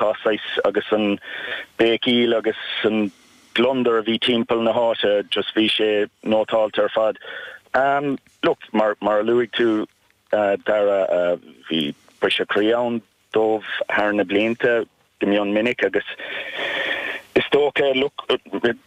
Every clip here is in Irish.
Tá saghas agus an béicíl agus an gliondar a bhí timpeall na háite just bhí sé nótáilte ar fad. Am look mar mar a luaigh tú Dara bhí briseadh croí ann dóibh thar na blianta go mion minic agus is dócha look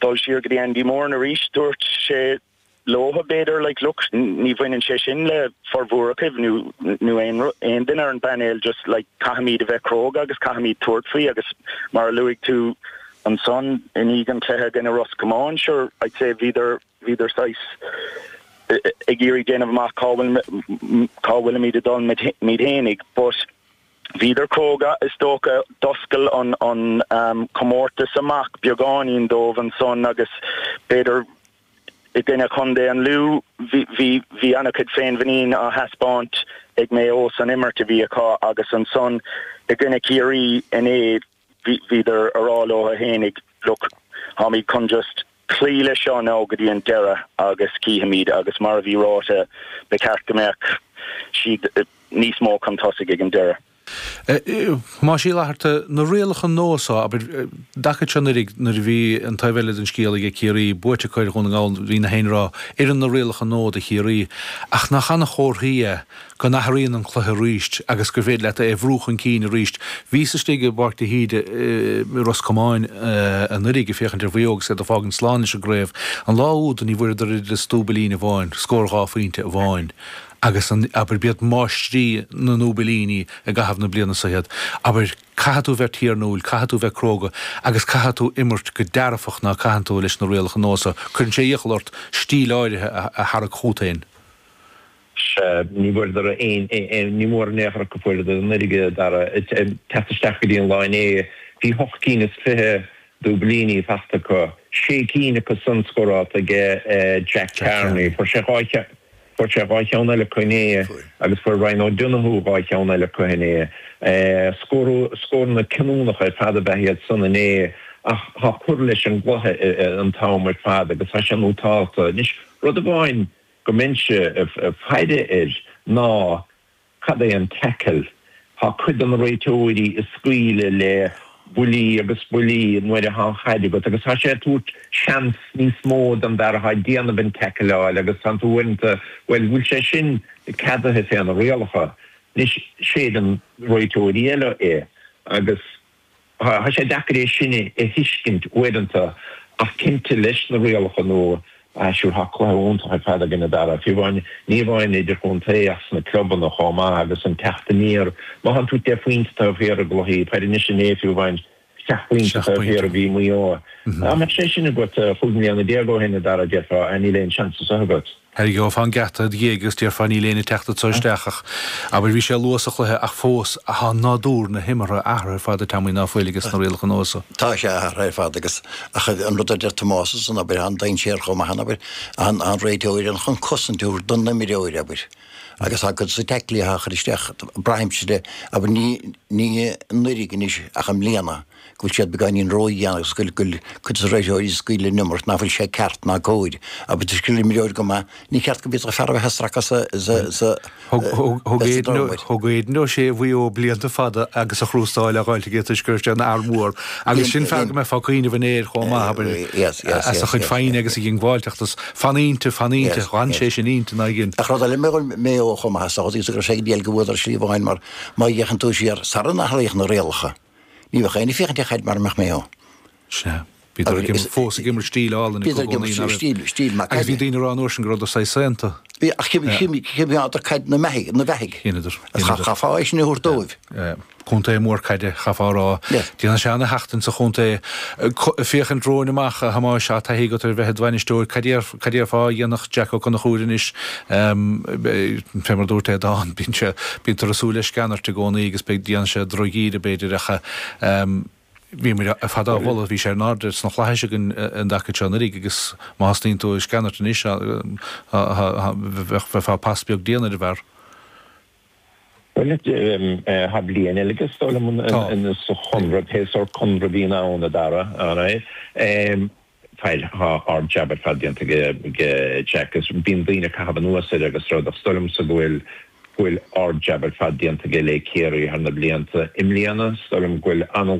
dul siar go dtí Andy Moran arís dúirt sé leotha, b'fhéidir, like, look, ní bhaineann sé sin le formhór agaibh nó, nó aon rud, aon duine ar an bpainéal, just, like, caithfimid a bheith cróga agus caithfimid tabhairt faoi agus mar a luaigh tú ansan i ndiaidh an chluiche i gcoinne Ros Comáin, sure, I'd say bhíodar, bhíodar saghas ag iarraidh déanamh amach cá bhfuil, cá bhfuilimid ag dul muid, muid fhéinig but bhíodar cróga is dócha, d'oscail an, an, um, comórtas amach beagáinín dóibh ansan agus b'fhéidir, i gcoinne Chontae an Lú. Bhí an-chuid féinmhuinín á thaispeáint ag Maigh Eo san imirt a bhí acu agus ansan i gcoinne Chiarraí inné bhíodar a rá leo fhéinig, look, táimid chun just cloí leis seo now go dtí an deireadh agus cífimid agus mar a bhí ráite, ba cheart go mbeadh siad níos mó chun tosaigh ag an deireadh. Más díláithrithe na rialacha nua so, abair, dtaca seo anuraidh nuair a bhí an taobh eile den scéal age Ciarraí, buaite acu ar Dhún na nGall, bhí nach éinne ag rá, oireann na rialacha nua do Chiarraí, ach nach an-chomhartha é go n-athraíonn an cluiche arís agus gur féidir leat é a bhrú chun cinn arís. Bhíos istigh i bPáirc de hÍde i Ros Comáin anuraidh ag féachaint ar Mhaigh Eo agus iad ag fágaint slán leis an gcraobh. An lá úd ní bhfuaireadar oiread is dúbailín amháin, scór dhá phointe amháin. agus an, abair, b'iad máistrí na ndúbailíní i gcaitheamh na bliana so iad, abair, caithfidh tú bheith tiarnúil, caithfidh tú bheith cróga agus caithfidh tú imirt go dearfach ná caitheann tú leis na rialacha nua so. Cuireann sé iachall ort stíl áirithe a tharrac chugat féin. Sea, ní bhfuaireadar aon, ní mór an laochra go bhfuaireadar an fhuirge ag teacht isteach go dtí an lá inné. Bhí ocht gcinn is fiche dúbailíní fachta acu, sé cinn acu san scórálta age Jack Carney. Fuair sé dhá cheann. Fuair sé dhá cheann eile acu inné agus fuair Ryan O'Donoghue dhá cheann eile acu inné. Scór, scóranna cinniúnacha ar fad ab ea iad san inné ach tá cur leis an gcluiche an t-am ar fad agus tá sé nótálta anois. Rud amháin go mbeinnse ag faire air ná Cad é an tackle? Tá cuid de na réiteoirí ag scaoileadh le buillí agus buillí nuair atá an chaid agat agus tá sé ag tabhairt seans níos mó don bhfear atá ag déanamh an tackleáil agus tánn tú uaireanta, bhuel, bhfuil sé sin ceadaithe fé na rialacha? Anois, séideann réiteoirí eile é agus. Tá sé deacair é sin a thuiscint uaireanta ach cinnte leis na rialacha nua, sure, tá cluiche iontach ar fad againn, a Dhara, fiú amháin, ní amháin idirchontae ach sna clubanna chomh maith agus an teacht aniar, má théann tú deich bpointe taobh thiar i gcluichí, cuir i gcás anois an é fiú amháin seacht bpointe taobh thiar a bhí Maigh Eo. Dá mbeadh sé sin agat cúig bliana déag ó shin, a Dhara, déarfá, níl aon seans as seo agat. Gheofá an geata id dhiaidh is déarfá níl éinne ag teacht anseo isteach ach. Abair bhí sé luath sa chluiche ach fós tá nádúr na himeartha athraithe ar fad i dtéarmaí na peile ag na rialacha nua so. Tá sé athraithe ar fad agus ach an rud a deir Tomás is an abair an dainséar chomh maith an abair an an réiteoir an chun cosaint a thabhairt don imreoir abair agus tá cuid de na tackleacha á chur isteach braithimse de abair ní ní anuraidh anois ach i mbliana. go bhfuil siad beagáinín ródheas agus go bhfuil cuid de thréithe Mhuiris scaoileadh in iomart nach bhfuil sé ceart ná cóir. Ab ait an scéal imreoir go mba ní ceart go bhféadfadh fear a bheith ag stracadh sa dóigh. Thug Aidan O'Shea ó Mhaigh Eo blianta fada agus crústáil á fháil aige toisc go raibh sé ina fhear mór agus sin fear go mbeifeá ag cuimhneamh air chomh maith, abair, as a chuid foighne agus a dhiongbháilteacht. Fan inti, fan inti, fan sé sin inti ná igin. Ach rud eile faoi Mhaigh Eo chomh maith as a thosaigh is go raibh sé ag déal go bhfuadar slí amháin mar má d'fhéachann tú siar, sara n-athraíodh na rialacha, Ní bheadh aon fhiach ag teacht air mara mbeadh mé ann. Sea. Bhíodar ag im, fós ag imirt stíl álainn i gcónaí. Bhíodar ag imirt stíl, stíl maith. Agus bhí daoine ag rá an uair sin go rabhadar saghas saonta. Bhí ach d'imríodar caid ina beathaidh, ina beathaidh. Dheineadar. Chaithfeá é sin a thabhairt dóibh. Contae mór caide, chaithfeá a rá. Déanann sé ana-sheachtain sa chontae. Féachaint romhainn amach, a Thomáis, tá taithí agat ar bheith i d'bhainisteoir. Cad déarfá, cad déarfá a dhéanfaidh Jack Ó Conchúir anois Fé mar a dúirt, n'fheadar, bíonn sé, bítear ag súil le sceanairt i gcónaí agus beidh, déanann sé droch-íde b'fhéidir ach bhí muid ar fad á mholadh, bhí sé ar an airdeall sna Flaithis againn an dtaca seo anuraidh agus má thosnaíonn tú ag sceanairt anois bheifeá pas beag dian ar an bhfear. Bhuel, tá bliain eile aige de réir an chonradh, pé sórt conradh a bhíonn ann, a Dhara? Tá ard jab ar fad déanta ag Jack agus bíonn daoine ag caitheamh anuas air agus rud is dóigh liomsa go bhfuil ard jab ar fad déanta aige le Ciarraí thar na blianta. I mbliana, is dóigh liom go bhfuil an-